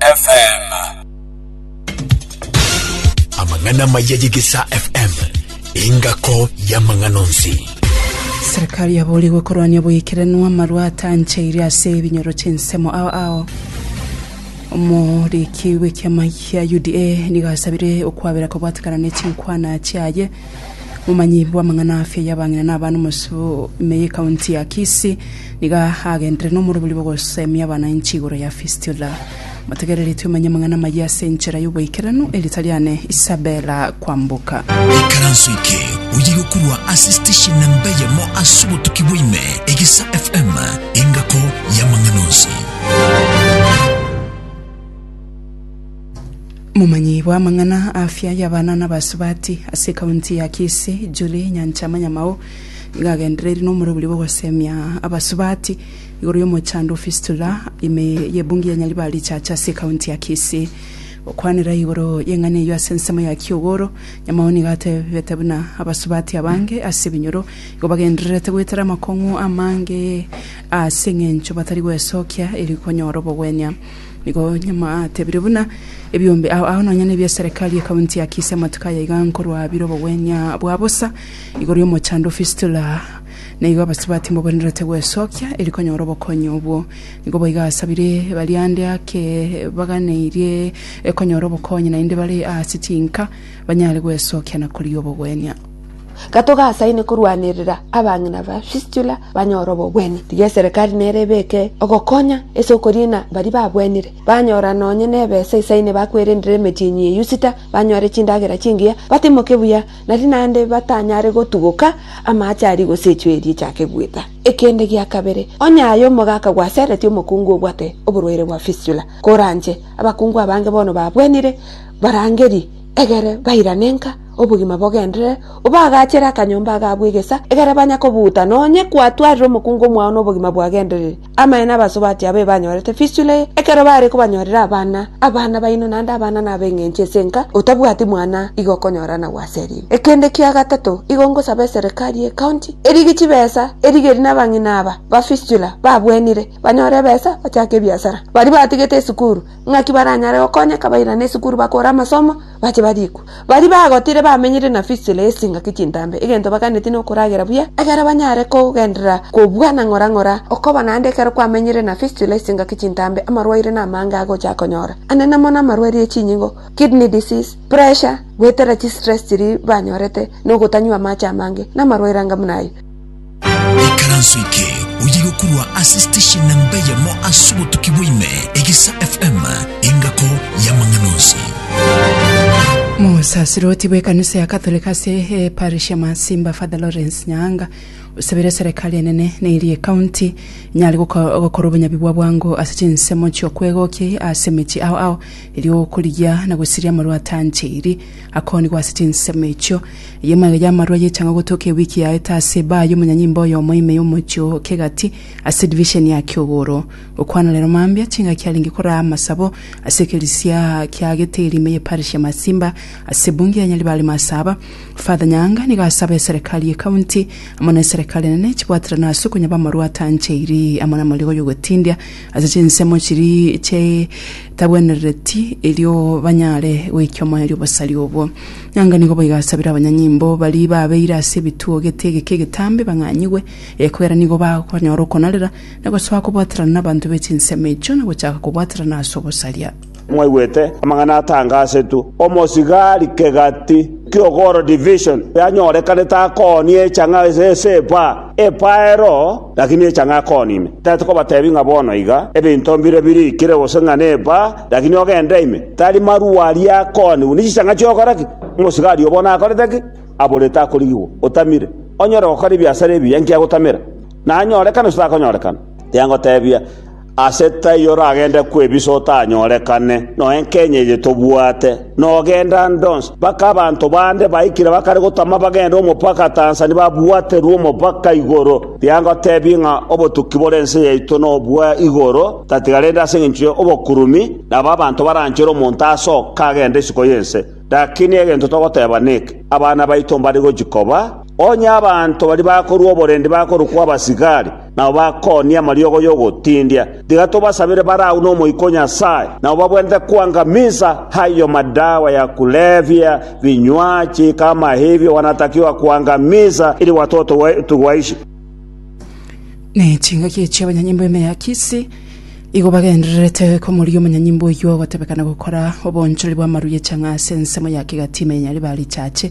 FM. Amang'ana maya y'Egesaa FM, engako y'amang'ana onsi. Serikali yaboorigwe korwania oboikeranwa amarwa atancheire ase ebinyoro chi'ensemo ao ao omoriki bw'ekiama kia UDA nigo asabire okwabera kobwatekana ne chinkwana chiaye Omomanyi bw'amang'ana afia y'abang'ina na abana omosio ime y'ekaunti ya Kisii nigo agenderere nomoroberio bw'ogosemia abananchi igoro ya fistula. Motegereri twemanye amang'ana amayia ase enchera y'oboikeranu erita riane Isabella Kwamboka. Ikaranso eke oye gokorwa ase station namba eyemo ase obotuki bwaime Egesa FM engako y'amang'ana onsi. Momanyi bw'amang'ana afia y'abana n'abasubati ase ekaunti ya Kisii, Julie Nyanchama Nyamao, nigo agendereiri n'omorobori bw'ogosemia abasubati igoro y'omochando o fistula ime y'ebungi ya Nyaribari Church ase ekaunti ya Kisii. Gokwanera igoro y'eng'ana eyio ase ensemo ya Kiogoro, Nyamao nigo atebete buna abasubati abange ase ebinyoro igo bagendererete goetera amakong'u amange ase eng'encho batari gwesokia eri konyora obogwenia. Nigo nyuma atebire buna ebiombe ao ao nonya nebia eserekari ye kaunti ya Kisii amatuko aya iga nkorwa bire obogwenia bwa bosa igoro y'omochando fistula na igo abasubati mboborenerete gwesokia eri konyora obokonyi obwo. Nigo boigo asabire baria ande ake baganeirie konyora obokonyi naende bare ase chinka banyare gwesokia na koria obogwenia. Gatogasaine korwanerera abang'ina ba Fistula banyore obogwenia. Tiga eserekari nere ebeke ogokonya ase okoriina baria babwenire, banyora nonye nebesa isaine bakwerendere emetienyi ya Yusita, banyore chindagera chingiya, batimoke buya, nari naende batanyare gotuguka amaache aria gosechwa eria echake gwita. Ekende gia kabere, onye aye omogaka gwaseretie omokungu obwate oborwaire bwa Fistula, koranche abakungu abange bono babwenire, barangerie, egere bairane nka, Obogima bogenderere, obaagachere akanyomba agabo egesa, egere banye kobuuta, na onye kwatwarire omokungu omwao nobogima bwagendereri. Amaye n'abasubati abo ebanyorete fistula eye, ekero baare kobanyorera abana, abana baino naende abana nab'eng'encho ase enka, otabwati mwana igo okonyora anagwo ase eriina. Ekende kia gatato, igo ngosaba eserekari y'ecounty erige chibesa erigeri nabang'ina aba ba fistula babwenire banyore ebesa bachake ebiasara. Baria batigete esukuru, ng'aki baranyare gokonyeka bairane esukuru bakore amasomo Bache barikwa. Baria bagotire bamenyire na Fisili ase chingaki chintambe, egento baganeti nokoragera buya, ekero banyare kogenderera kobua na ng'ora-ng'ora. Okoba naende ekero kwamenyire na Fisili ase chingaki chintambe, amarwaire namange agocha akonyora, anene mono amarwaire ye chinyingo, kidney disease, pressure, goetera chistress chiria banyorete, nogotanywa amache amange, namarwaire anga buna ayio. Ikaranso eke oye gokorwa ase station namba eyemo ase obotuki bwaime, Egisa FM, engako y'amang'ana onsi. Mosasiroti bw'ekanisa ya Katholiki ase eparish ya Masimba Father Lawrence Nyaanga osabire serikali enene na eria ekaunti enyare goko- gokora obonyabi bwa bwango ase chinsemo chi'okwegokia ase emechie ao ao erio okorigia na gosiria amarwatancheiri Akoonigwa ase chinsemo echio. Eyio magega amarwa y'echaanga gotoka ewiki yaete ase ebaa y'omonyanyimba oyomo ime y'omochie o Kegati ase edivisheni ya Kiogoro. Gokwana rero mambia chingaki arenge koraa amasabo ase ekerisia kia Geteri ime y'eparish ya Masimba ase ebunge ya Nyaribari Masaaba. Father Nyaanga nigo asaba eserekari y'ecounty amo na eserekari enene chibwaterane ase okonyaba amarwa atancheiri amo namariga y'ogotindia Ase chinsemo chiria chitabwenerereti, erio banyare goikia omoerio bosari obwo. Nanga nigo boigo asabire abanyanyimbo baria babeire ase ebituo gete egeke egetambe bang'anyigwe, ekiagera nigo bakonyora okonarera, na gosoa kobwaterana nabanto be chinsemo echio, na gochaka kobwaterana ase obosaria. Mwaigwete amang'ana atanga asetwe, omosigari kegati ki'ogoro division yanyorekanete akoonie echang'a ase esepa epaero, lakini echang'a akoonie ime. Tari tokobatebi ng'a bono iga ebinto mbire birikire gose ng'a nepa, lakini ogende ime, tari marua aria akoonie buna chichang'a chi'ogokora ki? Omosigari oo bono akorete ki? Aborete akorigigwa, otamire, onyore gokora ebiasara ebiya, inki agotamera? Nanyorekane gose takonyorekana? Tiangotebia. Ase taiyo oragende kwebisa otanyorekane, noe enkenye eye tobwate, nogenda ande onsi, mpaka abanto bande baikire bakare gotama bagende omopaka Tanzania babwaterwe omopaka igoro. Rigia ngotebie ng'a obotuki bore ense yaito nobwa igoro tatiga rende ase engencho y'obokurumi, nabo abanto baranchere omonto aase oka agende isiko y'ense. Lakini egento togoteba neke, Abana baito mbare gochia koba, onye abanto baria bakorua oborendi bakorokwa abasigari, nabo bakoonie amariogo y'ogotindia. Tiga tobasabere bare agwo n'Omoika o Nyasae, nabo babwenerete kwangamisa ayio madawa ya kulevya, binywachi, kama ebio gwanatakigwa kwangamisa, eri gwatotogwe tugwaishi. Ne chingaki echi abanyanyimbo ime ya Kisi igo bagendererete komoria omonyanyimbo oyio ogotebekana gokora obonchoreri bw'amaru ye chang'aa ase ensemo ya kegati ime ya Nyaribari Church.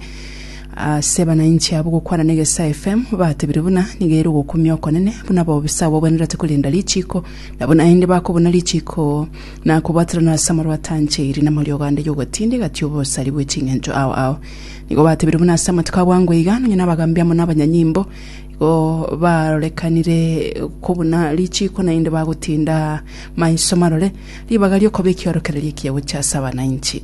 Ase banainchi abwo gokwana n'egesae FM batebire buna nigo ere ogokumia okonene, buna bobisa abagwenerete korenda richiiko, nabo naende bakobuna richiiko na kobwaterana ase amarwa atancheiri namariogo ande y'ogotinda egati obosari bwe ching'encho ao ao. Nigo batebire buna ase amatuko a bwango iga nonya nabagaambi amo nabanyanyimbo igo barorekanire kobuna richiiko naende bagotinda maiso marore ribaga ri'okoba ekiorokererio ekiya gochia ase abanainchi.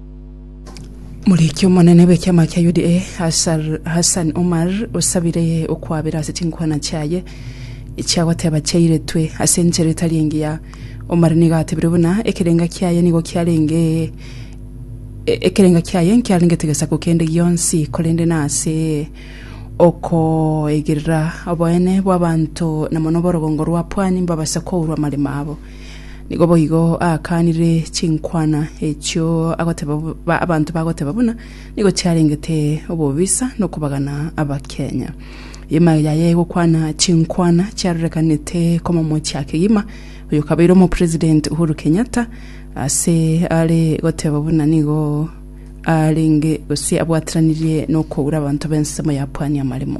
Omoriki omonene bw'ekiama kia UDA Hassan Omar osabire okwabera ase chinkwana chiaye echia goteba chiairetwe ase enchera etari engiya. Omar nigo atebire buna ekerenga kiaye nigo kiarenge ekerenga kiaye nkiarengete gesaku kende gionsi korende nase okoigerera oboene bw'abanto na mono oborogongo rwa pwani mbabase kourwa amaremo abo. Nigo boigo akanire chinkwana echio agoteba bo- ba- abanto bagoteba buna nigo chiarengete obobisa nokobagana Abakenya. Egima yaye egokwana chinkwana chiarorekanete komomochia kegima oyo kabeire omopresident Uhuru Kenyatta ase are goteba buna nigo arenge gose abwateranirie nokoura abanto b'ensemo ya pwani amaremo.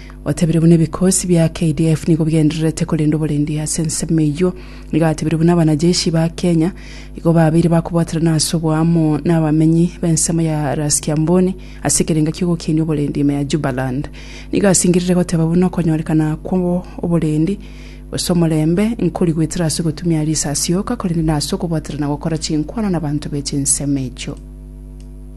Gwatebirie buna ebikosi bia KDF nigo bigendererete korenda oborendi ase ensemo eyio. Nigo atebirie buna abanajeshi ba Kenya igo babeire bakobwaterana ase oboamo nabamenyi bensemo ya Ras Kiamboni ase ekerengo ki'ogokenia oborendi ime ya Jubaland. Nigo asingerire goteba buna okonyorekana kw'oborendi gose omorembe nkori goetera ase ogotumia risasi yoka korende nase okobwaterana gokora chinkwana nabanto be chinsemo echio.